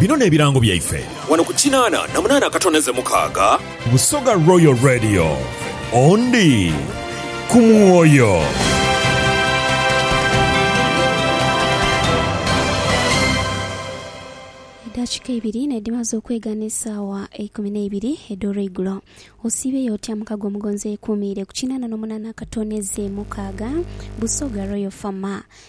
Bino n'ebirango byaife. Wano ku kinaana na munaana akatono eze mukaaga. Busoga Royal Radio. Ondi ku mwoyo. Edhaakika ibiri n'edhimaze okwega n'esaawa eikumi n'eibiri edh'olweigulo. Osiibeyo otya muka gw'omugonzi eyekuumiire ku kinaana n'omunaana akatono eze mukaaga? Busoga Royal FM.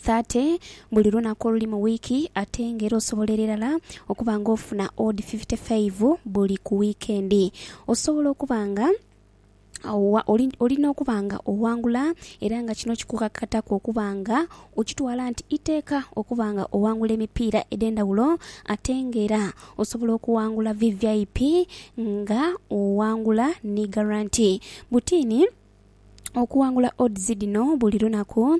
thirty buli lunaku oluli mu wiiki ate nga era osobola ererala okuba nga ofuna odi fifty five buli ku wiikendi. Osobola okuba nga owa, oli, oli n'okuba nga owangula era nga kino kikukakataku okuba nga okitwala nti iteeka okuba nga owangula emipiira edh'endhaghulo ate nga era osobola okuwangula VVIP nga owangula ni garanti. Butiini. okuwangula odds dhino buli lunaku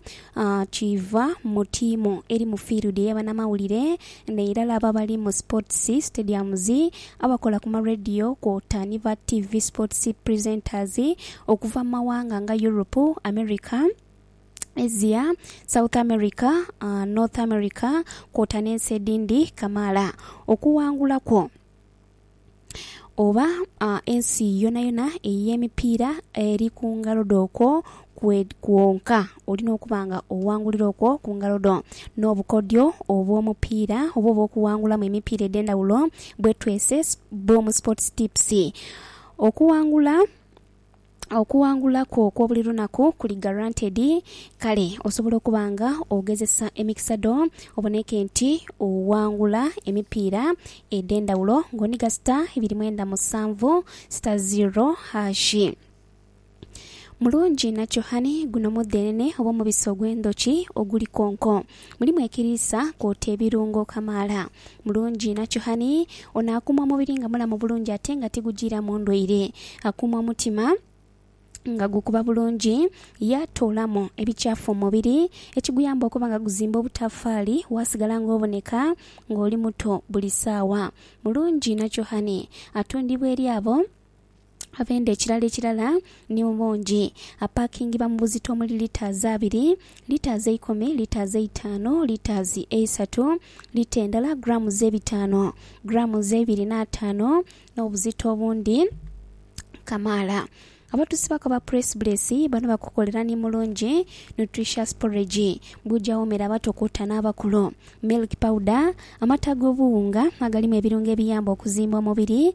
kiiva mu tiimu eri mu field eyabanamawulire neirala abo abali mu sports stadiums, abakola ku ma radio kwota ni ba TV sports presenters okuva mu mawanga nga Europe, America, Asia, South America, North America kwota n'ensi edhindi kamaala okuwangula kwo. oba ensi yonayona ey'emipiira eri ku ngalo dho okwo kwonka olina okuba nga owangulira okwo ku ngalo dho. N'obukodyo obw'omupiira oba obw'okuwangulamu emipiira edh'endhawulo bwetwese Boom Sports Tips. Okuwangula. Okuwangula kwo okw'obuli lunaku kuli guaranteed. Kale osobola okuba nga ogezesa emikisa dho oboneke nti owangula emipiira edh'endhawulo ng'onhiga sita ibiri mwenda musanvu sita ziro hashi. Mulungi nakyo honey, guno mudhenene oba omubisi ogw'endhoki oguli konko. Mulimu ekiriisa kwota ebirungo kamaala. Mulungi inhakyo hhani. Ono akuuma omubiri nga mulamu bulungi ate nga tigujiiramu ndwaire. Akuuma omutima nga gukuba bulungi ye atoolamu ebikyafu mu mubiri ekiguyamba okuba nga guzimba obutafaali waasigala ng'oboneka ng'oli muto buli saawa. Mulungi inhakyo hhani. Atundibwa eri abo. Avenda ekirala ekirala ni mu bungi. Apakingiba mu buzito omuli litres abiri, litres eikumi, litres eitaanu, litres eisatu, lita endala grams ebitaanu, grams eibiri n'ataanu n'obuzito obundi kamaala. Abatusibaku aba Press Bless bano bakukolera ni Mulungi Nutritious Porridge bw'oja awoomera abato kwota n'abakulu, Milk Powder, amata ag'obuwunga agalimu ebirungo ebiyamba okuzimba omubiri,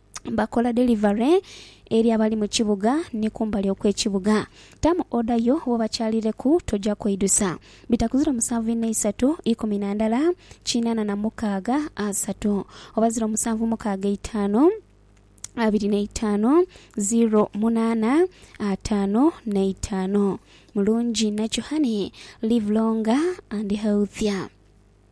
bakola delivare eri abali mu kibuga ni kumbali okw'ekibuga. Tamu oda yo bwobakyalireku toja kweidusa. Bitakuzira omusanvu ina isatu ikumi na ndala kinana na mukaaga asatu, oba ziro musanvu mukaaga eitaanu abiri na itaanu ziro munaana ataanu na itaanu. Mulungi nakyo honey, live longer and healthier.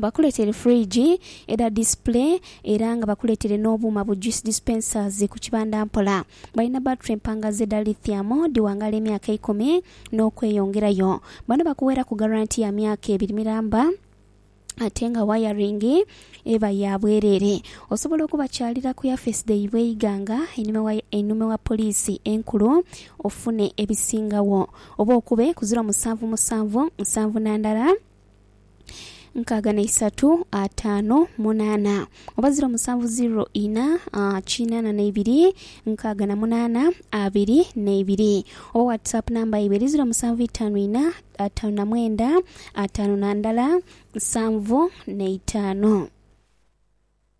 bakuletere fridge edha display era nga bakuletere n'obuuma bu juice dispensers ku kibanda mpola. Balina battery empangaze edha lithium dhiwangaala emyaka eikumi n'okweyongerayo. Bano bakuweeraku garanti ya myaka ebiri miramba ate nga wayaringi eba ya bwereere. Osobola okubakyalira ku yafeesi dhaibwe e Iganga einhuma ewa poliisi enkulu ofune ebisingawo oba okube ku ziro musanvu musanvu, nsanvu na ndala. nkaaga na isatu ataano munaana oba ziro musanvu ziro ina ah, kinaana na ibiri nkaaga na munaana abiri n'eibiri oba whatsapp namba yaibwe eri ziro musanvu itaanu ina ataano na mwenda ataano na ndala nsanvu n'eitaano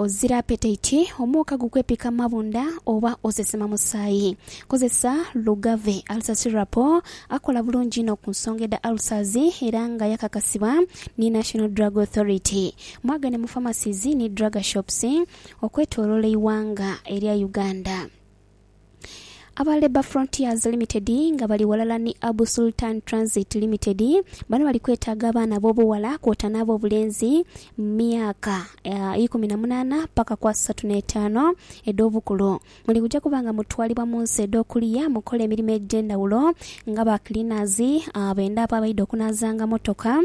Ozira apetaiti, omwoka gukwepika mu mabunda oba osesema musaayi? Kozesa Lugave Ulcer Syrup akola bulungi inho ku nsonga edha ulcers era nga yakakasibwa ni National Drug Authority. Mwagane mu pharmacies ni drug shops okwetoloola eighanga erya Uganda. Aba Labour Frontiers Limited nga bali ghalala ni Abu Sultan Transit Limited bano bali kwetaaga abaana ab'obughala kwota n'ab'obulenzi mu myaka ah, ikumi na munaana paka ku asatu n'etaano edh'obukulu. Muli kuja kuba nga mutwalibwa mu nsi edh'okuliya mukole emirimo egy'endhawulo nga ba cleaners, ah, b'endaapu abaidha okunaazanga mmotoka,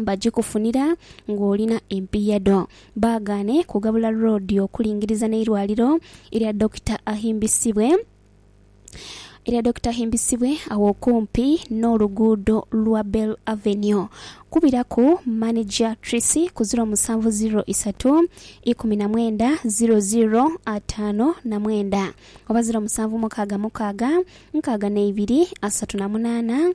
bagikufunira ng'olina empiiya dho. Baagaane kugabula loodi okulingiriza n'eirwaliro erya Dokita Ahimbisibwe erya Dokita Ahimbisibwe agho okumpi n'oluguudo lwa Bell Avenue. Kubiraku Maneja Trisi ku ziro musanvu ziro isatu ikumi na mwenda ziro ziro ataano na mwenda oba ziro musanvu mukaaga mukaaga nkaaga na ibiri asatu na munaana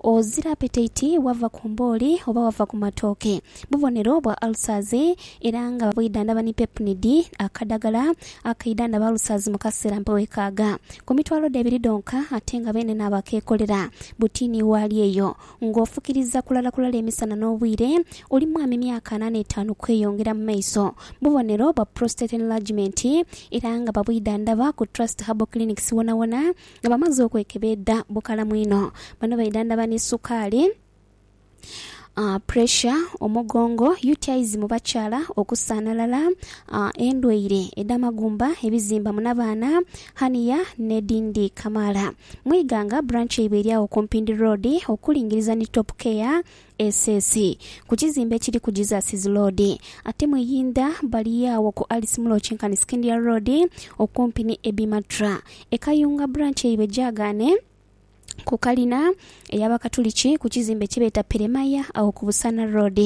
Ozira apetaiti bwava ku mbooli oba wava ku matooke bubonero bwa ulcers era nga bwidhandhaba ni pepnid, akadhagala akaidhandhaba ulcers mu kaseera mpe wekaaga. Ku mitwalo dhe ebiri dhonka ate nga beene naabo akeekolera buti ni waali eyo. Nga ofukiriza kulala kulala emisana n'obwire oli mwami myaka ana n'etaanu kweyongera mu maiso bubonero bwa prostate enlargement era nga babwidhandhaba ku Trust Herbal Clinics wonawona Nga bamaze okwekebeedha bukalamu inho, bano baidhandhaba ni sukaali, puresha, omugongo, UTIs mu bakyala, okusaanhalala, endwaire edh'amagumba, ebizimba mu nabaana, hernia, n'edhindi kamaala. Mu Iganga, branch yaibwe eri agho ku Mpindi Road okulingiriza ni Top Care SS, ku kizimbe ekiri ku Jesus's Road. Ate mu Iyindha bali agho ku Alice Muloki nkani Scindia Road okumpi ni Ebimatra. E Kayunga branch yaibwe gyagaane ku kalina ey'Abakatuliki ku kizimbe kye beeta Peremaya agho ku Busaana Road.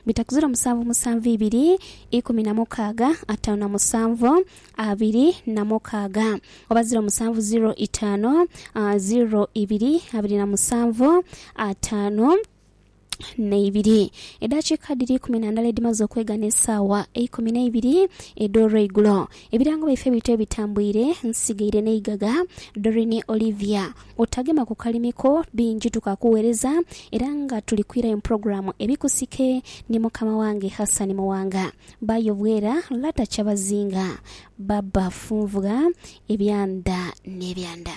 Bitakuzira omusanvu musanvu ibiri, ikumi na mukaaga, ataanu na musanvu. abiri na mukaaga oba ziro musanvu ziro itaanu ziro ibiri abiri na musanvu ataanu na ibiri. Edaakiika dhiri eikumi na ndala edhimaze okwegha n'esaawa eikumi na ibiri edh'olweigulo, ebirango byaife bityo ebitambuire nsigaire n'eighagha. Doreen Olivia, Otagema ku kalimi ko bingi tukakughereza era nga tuli kwirayo mu pulogulaamu Ebikusike ni mukama wange Hassan Muwanga. Ba yobwera lata kyabazinga. Ba bafunvugha ebyanda n'ebyanda.